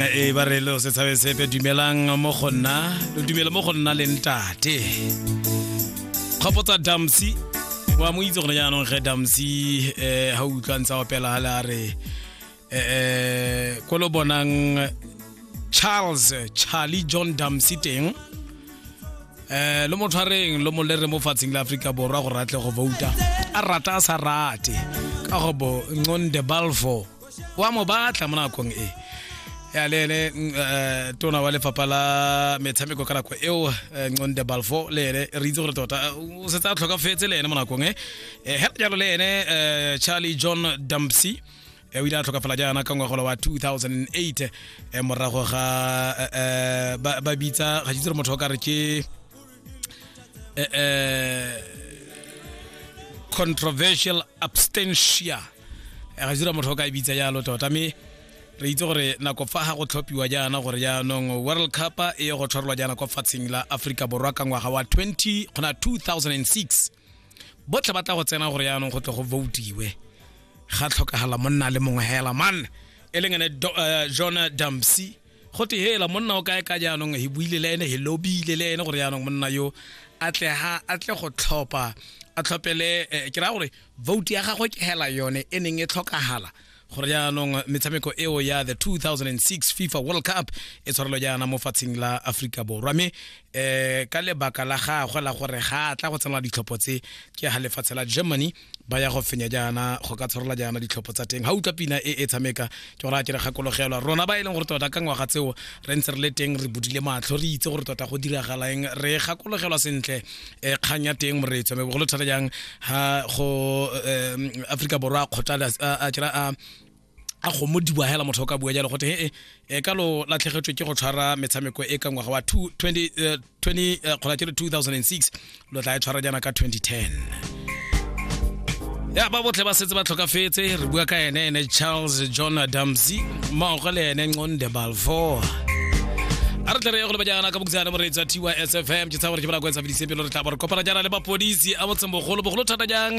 e ba re lo se tshabe sepe dumelang mo go nna lo dumele mo go nna le ntate kgopotsa damsi wa mo itse gone jaanong ge damsi um ga o utlwa ntse a opela gale a re um ko lo bonang charles charlie john damsi teng um lo mo tshwareng lo mo lere mo fatsheng la aforika borwa gore a tle go vouta a rata a sa rate ka gobo nconde balfo wa mo batla mo nakong e ya le ene mm, eh, tona wa lefapha la metshameko ka nako eo eh, nconde balfo le ene re itse gore tota eh, o setse a tlhokafetse le ene mo nakong e Eh, hela jalo le ene eh, charlie john dumpsy eh, o ile a tlhokafala jaana ka ngwagola wa 2008 eh, morago ga eh, eh, ba ba bitsa ga ke itse gore motho o ka re ke eh, eh, controversial abstentia Eh, ga sira motho o ka e bitsa jalo tota mme re itse gore nako fa ga go tlhophiwa jaana gore jaanong world cup e ye go tshwarelwa jaana kwa fatsheng la aforika borwa ka ngwaga wa 20 gona 2006 botlhe ba tla go tsena gore jaanong go tle go votiwe ga tlhokagala monna le mongwe hela man e leng ene Do- eh, john dumpsy go te hela monna o kae ka jaanong he buile le ene he lobile le ene gore jaanong monna yo a tle ha a tle go tlhopha a tlhopele eh, ke raya gore vote ya gagwe ke hela yone e neng e tlhokagala gore jaanong metshameko eo ya the 2006 fifa world cup e tshwarelo jaana mo fatsheng la aforika borwa mme um ka lebaka la gagwe la gore ga a tla go tsenela ditlhopho tse ke ga lefatshe la germany ba ya go fenya jaana go ka tshwarola jaana ditlhopho tsa teng ga utlwa pina e e tshameka ke gore a kere gakologelwa rona ba e leng gore tota ka ngwaga tseo re ntse re le teng re budile matlho re itse gore tota go diragalang re gakologelwa sentle um kgang ya teng moreetso me bogolo thata jang ga go um aforika borwa a kgotla a kere a a go mo diboa hela motho o ka bua jalo gote e e ka lo latlhegetswe ke go tshwara metshameko e ka ngwaga wa 20 2006 lo tla e tshwara jana ka 2010 ya ba botle ba setse ba tlhokafetse re bua ka ene ene charles john adamsy mmaogo le ene nconde balfour a re tle re ye go leba jaana ka bokutsana moreetsi wa tysfm ke tsaya gore ke bana ko etsa fedise pelo re tla bo re kopana jaana le mapodisi a motseng bogolo bogolo thata jang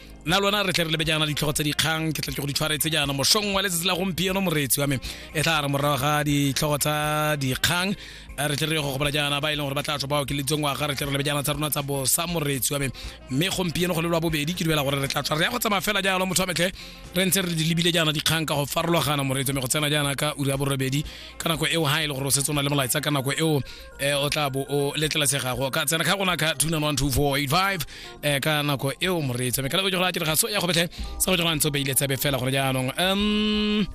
nna lona re tle re lebe jaana ditlhogo tse dikgang ke tle ke go di tshwaretse jaana mosong wa letsatsi la gompieno moreetsi wa me e tla re morago ga ditlhogo tsa dikgang eh, re tle re go gopola jaana ba e leng gore ba tla tswa ba okeletseng waga re tle re lebe jaana tsa rona tsa bosa moreetsi wa me mme gompieno go le lwa bobedi ke dumela gore re tla tswa re ya go tsamaya fela jalo motho wa metlhe re ntse re di lebile jaana dikgang ka go farologana moreetsi me go tsena jaana ka uri ya borobedi ka nako eo ha e le gore o setse o na le molaetsa ka nako eo eh, o tla bo o letlelatsegago ka tsena ka gona ka 2912485 um ka nako eo moreetsi mme ka labo jogora a tiraga so ya go betlhe sa go jogora ntse o beile tsebe fela gore jaanong um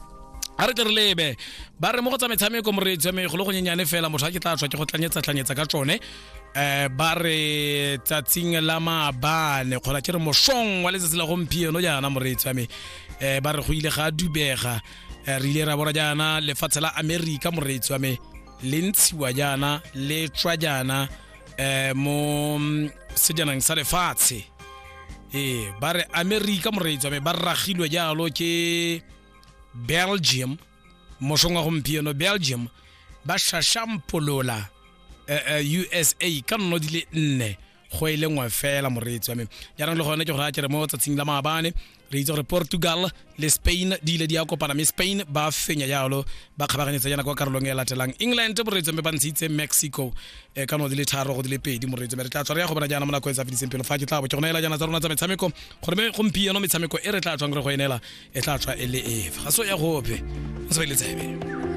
a re tle re lebe ba re mo go tsa metshameko moreetsi wa me go le go nyenyane fela motho a ke tla tswa ke go tlanyetsa-tlanyetsa ka tsone um ba re tsatsing la maabane kgona ke re mosong wa letsatsi la gompieno jaana moreetsi wa me um ba re go ile ga dubega um re ile ra bona jaana lefatshe la amerika moreetsi wa me le ntshiwa jaana le tswa jaana eh mo mm, sejanang sa lefatshe ee ba re america moreetsi wa me ba ragilwe jalo ke belgium mosong wa gompieno belgium ba shashampolola eh, eh, usa ka nno di le nne go e le nngwe fela moreetsi wa me jaanong le gone ke go raya kere mo tsatsing la maabane re itse gore portugal le spain di ile di ya kopana mme spain ba fenya jalo ba kgabaganyetsa yana kwa karolong e latelang england moreetso mme ba ntshitse mexico e ka no di le tharo go di le pedi moreetso mme re tla tswa re ya go bona jaana mo nako e sa fediseng pelo fa ke tla bo ke go neela jaana tsa rona tsa metshameko gore mme gompieno metshameko e re tla tswang re go enela e tla tswa e le efe ga so ya gope o se ba ile tsebe